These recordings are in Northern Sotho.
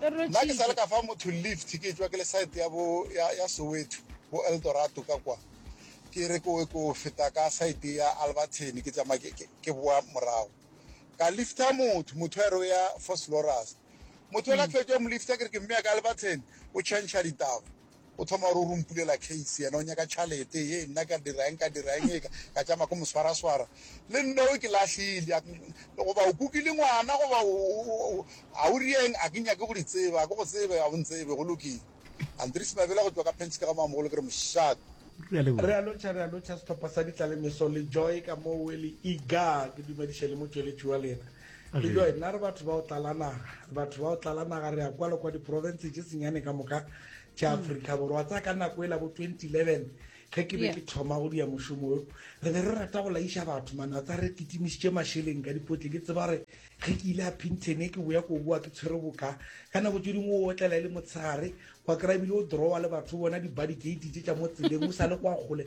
Nna ke sa le ka fa motho lift ke tšwa ke le side ya bo ya, ya Soweto bo Eldorato ka kwa ke re ko ko feta ka side ya Albertine ke tsamaya ke, ke, ke boa morago ka lifta motho motho a re o ya Foslorus motho la fetša mo lifta ke re ke mmea ka Albertine o change ditaba O thoma gore o ro mpulela case yena o nyaka tšhalete ye nna ka dira eng ka dira eng eka ka tšama ko moswaraswara le nna o ke lahlile goba o kukile ngwana goba a o rieng a ke nyake go di tseba a ke go tsebe a o ntsebe go lokile Andries Mabela go tšwa ka Penske ga Mamogolo ke re mošate Re a lotšha, re a lotšha sehlopha sa ditlalemeso le Joy ka mo o e le Igaa ke dumediše le motšweletši wa lena. le jo nna re batho ba o tlala naga re batho ba o tlala naga re ya kwa le kwa diporofense tše senyane ka moka tša hmm. aforika borwa tsa ka nako e la bo 2011 ge ke be ke thoma go dia mošomo yo re be re rata go laiša batho mane a tsa re kitimišitše mašeleng ka dipotle ke tseba re ge ke ile a pintene ke boya ko boa ke tshwere boka ka nako tse dingwe o otlela e le motshegare kwa kry-a ebile o drawa le batho bona di-body gate tse tša mo tseleng o sa le kwa kgole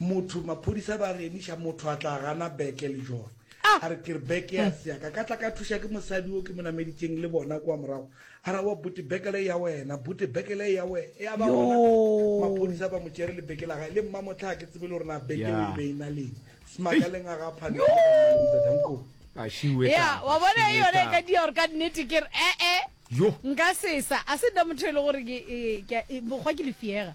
Motho, Maphodisa ba re emiša motho a tla gana beke le jone. A re ke re beke ya se yaka ka tla ka thuša ke mosadi yo ke mo nameditšeng le bona kwa morago. A ra wa bote beke le ya wena, bote beke le ya wena. Ya ba gona maphodisa ba mo tšere le beke la gae le mma motlha a ke tsebe le gore na beke eo e be e na leng. Smaka le nga ga phane le ga mma le mzadankoo. Ya wa bona e yona e ka dia gore ka nnete ke re ee nka sesa a se nna motho e le gore ke bokgwa ke lefiega.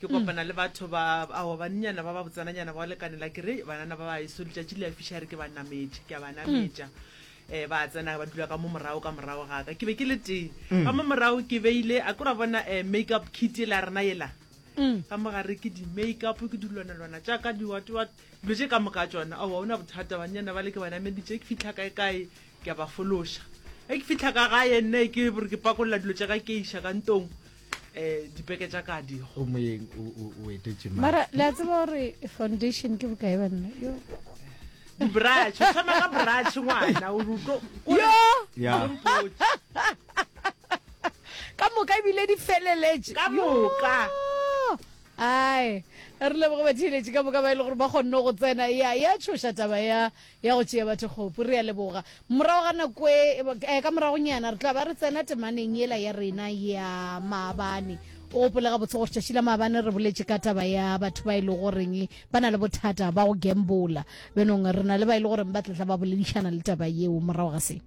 ke kopana le batho ba ao bannyana ba ba botsananyana ba lekanela ke re banana ba baeso letšatši le a fišare ke ba nametše ke a ba nametša um ba tsena ba dula ka mo morago ka morago gaka ke be ke le tee ka mo morago ke beile a kora bona um make up kit e la rena ela ka mo gare ke di-make up ke dilwanalwana jaaka diwatewat dilo tše ka moka tsona ao ga o na bothata bannyana ba le ke ba nameditše ke fitlha kae kae ke a ba fološa ge ke fitlha ka gae nne ke bore ke pakolola dilo tša ka ke iša ka ntong um dipeke tša kadi o moyeng o etetše mara le a tseba gore foundation ke bokae banna yo dibrach o tshwana ka brach ngwana o ruto ka moka ebile di feleletše ka moka ai re leboge batheeletše ka moka ba e le gore ba kgonne go tsena ya ya tshoša taba ya ya go tšea batho kgopu. Re a leboga. Morago ga nako e, eh, ka moragonyana re tla ba re tsena temaneng yela ya rena ya maabane. O gopole gabotse gore tšatši la maabane re boletše ka taba ya batho ba e le goreng ba na le bothata ba go gambola. Bjanong re na le ba e le goreng ba tlatla ba boledišana le taba yeo morago ga se.